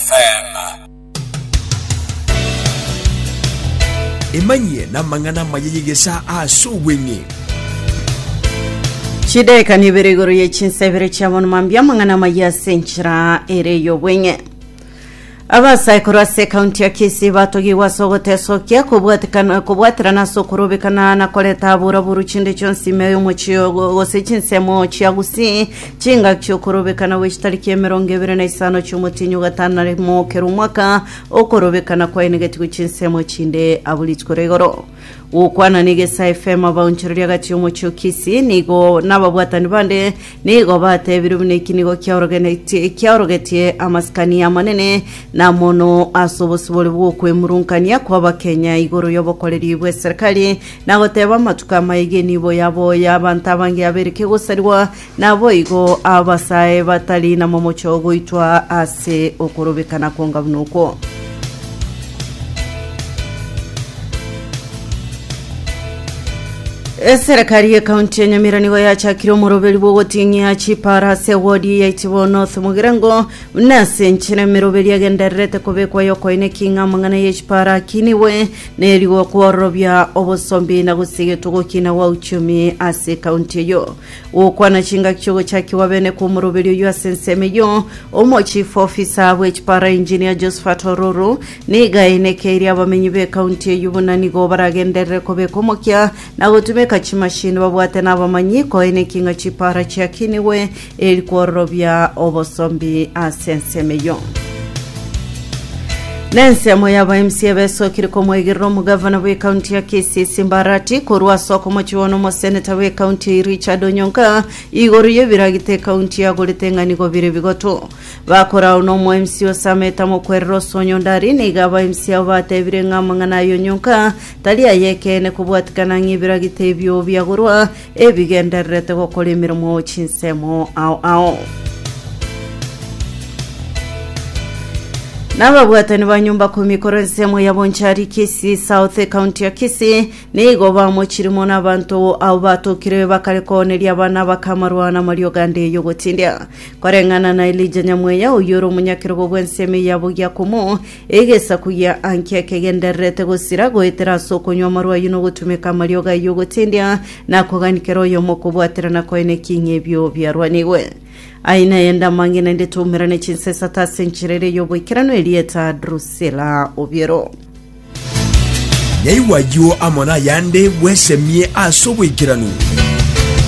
Selah. Emanyie namang'ana amaya y'egesaa as'obweng'e. Chidaeka nibere igoro ye chinsa ibere chia bono mambia amang'ana amaya ase enchera ere y'obweng'e abasaekuru ase ekaunti ya kisii batogigwe ase ogotesokia kobwatikana- kobwaterana ase okorobekana na koreta abura buru chinde chionsi ime y'omochie ogo gose chinsemo chia gusii Chingaki chi'okorobekana gwe chitariki emerongo ebere na isano chi'omotienyi o gatano na rimo kera omwaka, okorobekana kwaenegetigwe chinsemo chinde abwo rituko ria igoro. Gokwana nigo ase FM abaonchoreria agati omochie o Kisii, nigo nababwatani bande nigo batebire buna eki nigo kiaorogenetie kiaorogetie amasikani amanene na mono ase obosibore bw'okwemurungania kw'Abakenya igoro y'obokoreri bw'eserikari na goteba amatuko amaiga enibo yabo y'abanto abange yabereke gosarigwa Naboigo abasae batari namomoche ogoitwa ase okorobekana kwonga buna okwo. Eserekari ye kaunti ya Nyamira nigo yachakire omoroberi bw'ogoting'ia chipara ase wodi ya Itibo North Mogirango buna ase enchera emeroberi egendererete kobekwa y'okoina eking'a amang'ana y'echipara akinigwe na erigwa kwororobia obosombi na gosigetwa ogokina gwa uchumi ase kaunti eyio. Gokwana chingaki chi'ogochakigwa bene kw'omoroberi oyio ase ensemo eyio, Omochief Officer bw'echipara Engineer Josephat Ororo, nigo ainekeire abamenyi b'ecounty eyio buna nigo baragenderere kobeka omokia na gotumeka chimashini babwate nabamanyi koineki ng'a chipara chiakinigwe eri kwororobia obosombi ase ensemo eyio. Nensemo yabo mca ebesokire komwegerera omogavana bw'ekaunti ya Kisii Simbarati korwa ase okomochiwana omoseneta bw'ekaunti eye Richard Onyonka igoro y'ebiragita ekaunti yagorete eng'anigo bire bigoto. Bakore ao nomo mca o Samet amokwerere ase Onyondari nigo aba mca abo batebire ng'a amang'ana aya Onyonka tari ay'ekeene kobwatikana ng'a ebiragita ebio biagorwa ebigendererete gokora emeremo chinsemo ao ao. N'ababwatani ba nyomba kumi korwa ensemo ya Bonchari Kisii South County ya Kisii nigo bamochiremo n'abanto abo batokire bakare kooneria abana bakamarwa n'amariogo ande y'ogotindia. Koreng'ana na Elija Nyamweya oyio ore omonyakerogo bw'ensemo eyabo Giakomo, Egesaku gia Ankia kegendererete gosira, goetera ase okonywa amarwa ayio na ogotumeka amariogo ayio ogotendia na kogania kera oyomo okobwaterana koene ki ng'a ebio biarwanigwe. Aye naende amang'ina inde toumerane chinsa isato ase enchera eria y'oboikeranu erieta Drusila obiero. Nyaigwa ayio amo nayande bwesemie ase oboikeranu.